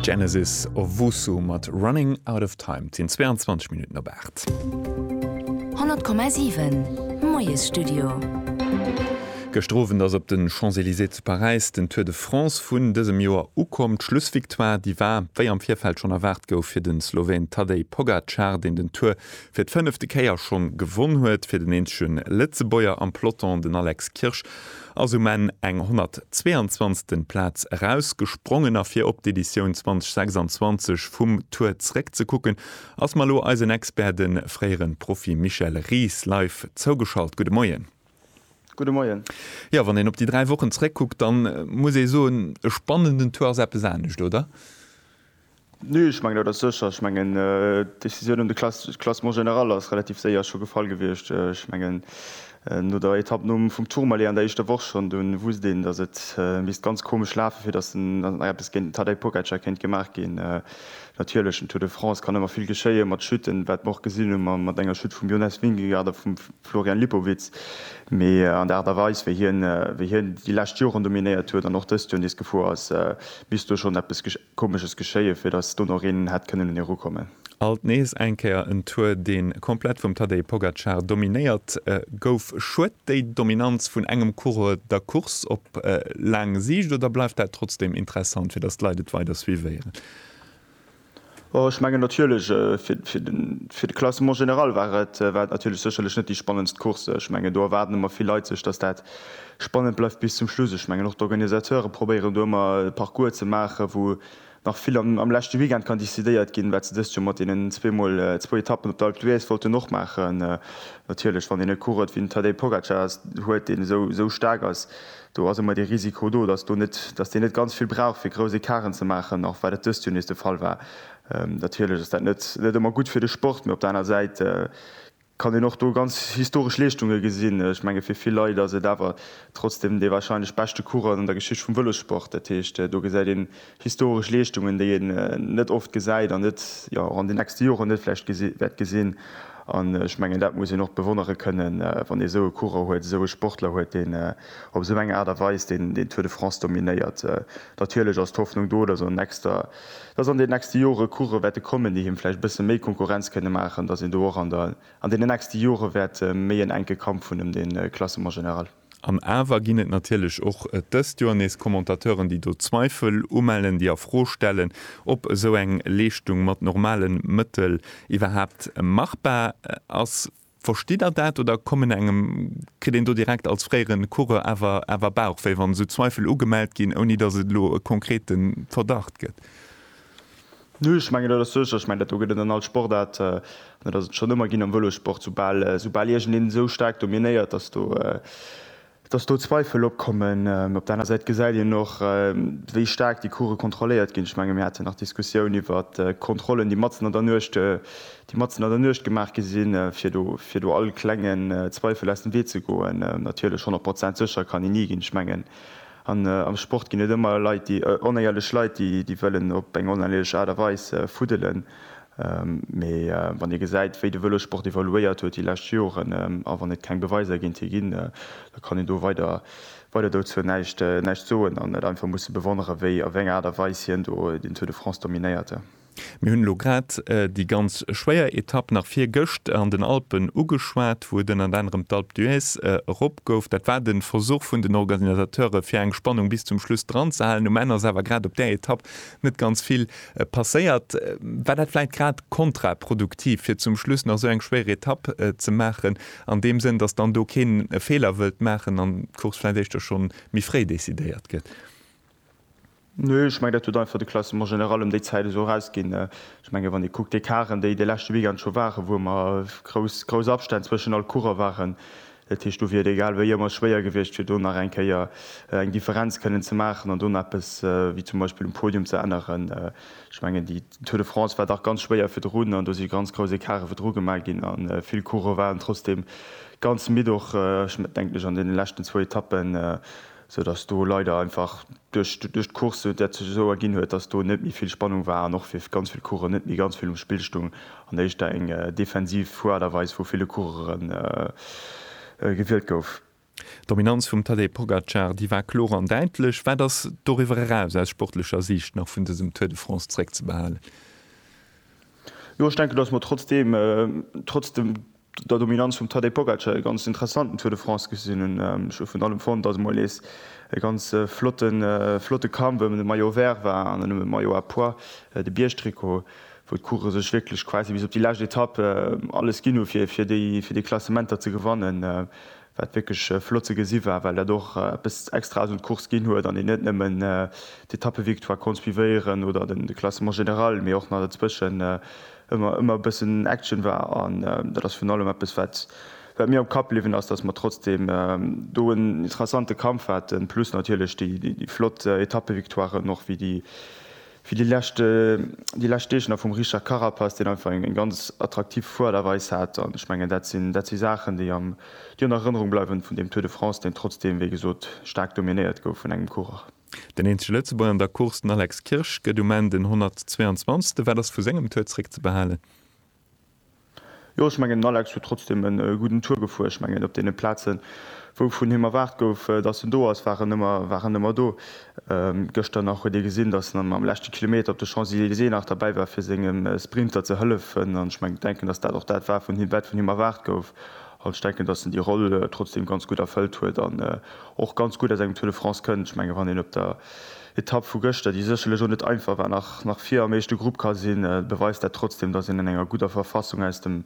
Genesis Owusu mat Running Out of Time. Et sinn 22 Minutten op 8. 100,7 Moiesstudio. Gëschter Owend ass op de Champs-Elysées zu Paräis den Tour de France vun dësem Joer ukomm. D'Schlussvictoire, déi war, wéi am Virfeld schonn erwaart gouf, fir de Sloween Tadej Pogacar, deen den Tour fir d'fënnefte Kéier schonn gewonn huet. Fir den eenzege Lëtzebuerger am Peloton, den Alex Kirsch, ass um Enn eng 122. Plaz erausgesprongen a fir op d'Editioun 2026 vum Tour zréckzekucken, ass mer elo eisen Expert, de fréiere Profi Michel Ries, live zougeschalt. Gudde Moien. Gudde Moien. Jo, wann een op déi dräi Wochen zréckkuckt, da muss ee soen, e spannenden Tour ass eppes anescht, oder? Nee, ech mengen dat ass sécher. Ech mengen d'Decisioun ëm de Classement général ass relativ séier scho gefall gewiescht. Ech mengen no der Etapp nom vum Tourmalet an der éischter Woch schonn, do wusst een, datt et misst ganz komesch lafen, fir datt eppes géint den Tadej Pogacar kéint gemaach ginn. Natierlech, den Tour de France kann ëmmer vill geschéien, mat Chuten, wat mer och gesinn hu mat enger Chute vum Jonas Vingegaard a vum Florian Lipowitz. Mee an der Aart a Weis, wéi hien déi lescht Joren dominéiert huet an och dëst Joer nees gefuer ass, misst do schonn eppes Komesches geschéien, fir datt do nach een hätt kënnen un e rukommen. Alt nees eng Kéier en Tour, dee komplett vum Tadej Pogacar dominéiert gouf. Schued déi Dominanz vun engem Coureur der Course op laang Siicht, oder bleift dat trotzdeem interessant, fir datt d'Leit et weider suivéieren? Ech mengen natierlech, fir de Classement général war et natierlech sécherlech net déi spannendst Course. Ech mengen do erwaarden ëmmer vill Leit sech, datt dat Spannend bleift bis zum Schluss. Ech mengen och d'Organisateure probéieren do ëmmer e Parcours ze maachen, wou nach vill am leschte Weekend kann decidéiert ginn, wat se dëst Joer mat deenen zweemol zwou Etappen op der Alpe d'Huez wollten och maachen. Natierlech, wann een e Coureur wéi den Tadej Pogacar huet, deen esou staark ass, do ass ëmmer dee Risiko do, dass deen net ganz vill brauch fir grouss Ecarten ze maachen, och wat et dëst Joer nees de Fall war. Natierlech ass dat net ëmmer gutt fir de Sport, mee op der aner Säit kann een och do ganz historesch Leeschtunge gesinn. Ech menge fir vill Leit ass et awer trotzdem dee warscheinlech beschte Coureur an der Geschicht vum Vëlossport. Dat heescht, do gesäit een historesch Leeschtungen, déi een net oft gesäit an net, jo, och an den nächste Joren net vläicht gesi wäert gesinn. An ech mengen, dat muss een och bewonnere kënnen, wann ee esou e Coureur huet, esou e Sportler huet, deen op esou eng Aart a Weis deen, deen Tour de France dominéiert. Natierlech ass d'Hoffnung do, dass an nächster. dass an den nächste Jore Course wäerte kommen, déi him vläicht e bësse méi Konkurrenz kënne maachen, dass een do och an deenen nächste Jore wäert méi en enke Kampf hunn ëm de Classement général. An awer ginn et natierlech och dëst Joer nees Commentateuren, déi do Zweifel umellen, déi a Fro stellen, ob esou eng Leeschtung mat normale Mëttel iwwerhaapt machbar ass. Verstitt der dat oder kommen engem, kritt een do direkt als fréiere Coureur awer awer Bauchwéi, wann esou Zweifel ugemellt ginn, ouni datt et elo e konkrete Verdacht gëtt? Nö, ech mengen dat ass sécher. Ech mengen dat do gëtt et an all Sportaart, an dat ass et schonn ëmmer ginn am Vëlossport, soubal soubal iergendeen esou staark dominéiert, datt do Dass do Zweifel opkommen. Op der aner Säit gesäit een och, wéi staark déi Course kontrolléiert ginn. Ech menge mir haten nach d'Diskussioun iwwer Kontrollen, déi matzen an der Nuecht, déi matzen an der Nuecht gemaach gi sinn, fir do, fir do all klengen Zweifel aus dem Wee ze goen. Natierlech, honnert Prozent sécher kann een ni ginn. Ech mengen, an am Sport ginn et ëmmer Leit, déi, onéierlech Leit, déi, déi wëllen op eng oneierlech Aart a Weis fuddelen. Mee wann ee gesäit, wéi de Vëlossport evoluéiert huet déi lescht Joren, a wann et keng Beweiser géint hie ginn, da kann een do weider weider dozou näischt näischt soen an et einfach musse bewonnere wéi op eng Aart a Weis hien do den Tour de France dominéierte. Mir hunn elo grad déi ganz schwéier Etapp nach virgëscht an den Alpen ugeschwat, wou et ënnert anerem d'Alpe d'Huez erop gouf. Dat war de Versuch vun den Organisateure fir eng Spannung bis zum Schluss dranzehalen. Um Enn ass awer grad op där Etapp net ganz vill Passéiert, war dat vläit grad kontraproduktiv, fir zum Schluss nach esou eng schwéier Etapp ze maachen, an deem Sënn, datt dann do keen e Feeler wëllt maachen an d'Course vläit éischter schonn méi fréi decidéiert gëtt? Nö, ech mengen, dat huet einfach de Classement général ëm déi Zäit esou erausginn. Ech mengen, wann ee kuckt, d'Ecarten, déi de leschte Weekend scho waren, wou ëmmer grouss, grouss Abstänn zwëschen all Coureur waren, Dat heescht, do wier et egal wéi ëmmer schwéier gewiescht, fir do nach eng Kéier eng Differenz kënnen ze maachen an do nach eppes wéi zum Beispill um Podium ze änneren. Ech mengen, déi Tour de France war dach ganz schwéier virdrun an do si ganz grouss Ecartë virdru gemaach ginn a vill Coureuren waren trotzdeem ganz midd och, ech denken ech, an deene leschten zwou Etappen. sou dass do leider einfach duerch duerch d'Course dat sech esou erginn huet, dass do net méi vill Spannung war an och fir ganz vill Coureuren net méi ganz vill um Spill stung an éischter eng defensiv Fueraderweis vu ville Coureuren gewielt gouf. D'Dominanz vum Tadej Pogacar, déi war kloer an däitlech. Wat ass doriwwer eraus aus sportlecher Siicht nach vun dësem Tour de France zréckzebehalen? Jo, ech denken, dass mer trotzdeem, trotz dem. der Dominanz vum Tadej Pogacar e ganz interessanten Tour de France gesinn hunn. Ech hu vun allem fonnt, datt et mol nees e ganz flotte Kampf ëm de Maillot Vert war an net nëmmen de Maillot à pois, de Biergtrikot, wou d'Coureuren sech wierklech quasi bis op déi lescht Etapp alles ginn hu fir déi Klassementer ze gewannen. wat wierklech flott ze gesi war, well dat och eppes extra ass un d'Course ginn huet an een net nëmmen d'Etappevictoire konnt suivéieren oder de Classement général, mee och nach dozwëschen ëmmer e bëssen Action war. An dat ass virun allem eppes, wat mir am Kapp bliwwen ass, dass mer trotzdeem do en interessante Kampf haten, plus natierlech déi flott Etappevictoiren och, wéi déi Fir déi lescht déi lescht Deeg nach vum Richard Carapaz, deen einfach eng eng ganz attraktiv Fuerderweis hat. An ech mengen, dat sinn dat si Saachen, déi am déi an Erënnerung bleiwen vun deem Tour de France, deen trotzdeem, wéi gesot, staark dominéiert gouf vun engem Coureur. Den eenzege Lëtzebuerger an der Course, den Alex Kirsch, gëtt um Enn den 122. Wat ass vu sengem Tour zréckzebehalen? Jo, ech mengen, den Alex huet trotzdeem e gudden Tour gefuer. Ech mengen, op deene Plazen, wou vun him erwaart gouf, datt en do ass, war en ëmmer, war en ëmmer do. Gëschter nach huet ee gesinn, datt en am leschte Kilometer op de Champs-Elysées nach derbäi war, fir sengem Sprinter ze hëllefen. An ech mengen, denken, datt dat och dat war, vun him, wat vun him erwaart gouf. An ech denken, datt en déi Roll trotzdeem ganz gutt erfëllt huet an och ganz gutt aus engem Tour de France kënnt. Ech mengen, wann een op der. Etapp vu gëschter, déi sécherlech och net einfach war, nach vir am éischte Grupp ka sinn, beweist dat trotzdeem, datt een an enger gudder Verfassung aus dem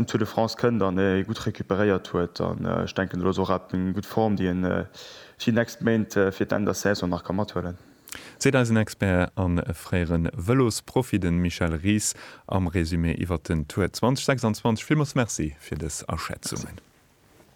Tour de France kënnt an ee gutt recuperéiert huet. An ech denken, do ass och awer eng gutt Form, déi een déi nächst Méint fir d'Enn der Saison nach ka mathuelen. Seet eisen Expert a fréiere Vëlosprofi, de Michel Ries, am Resumé iwwert den Tour 2026. Villmools Merci fir dës Aschätzungen.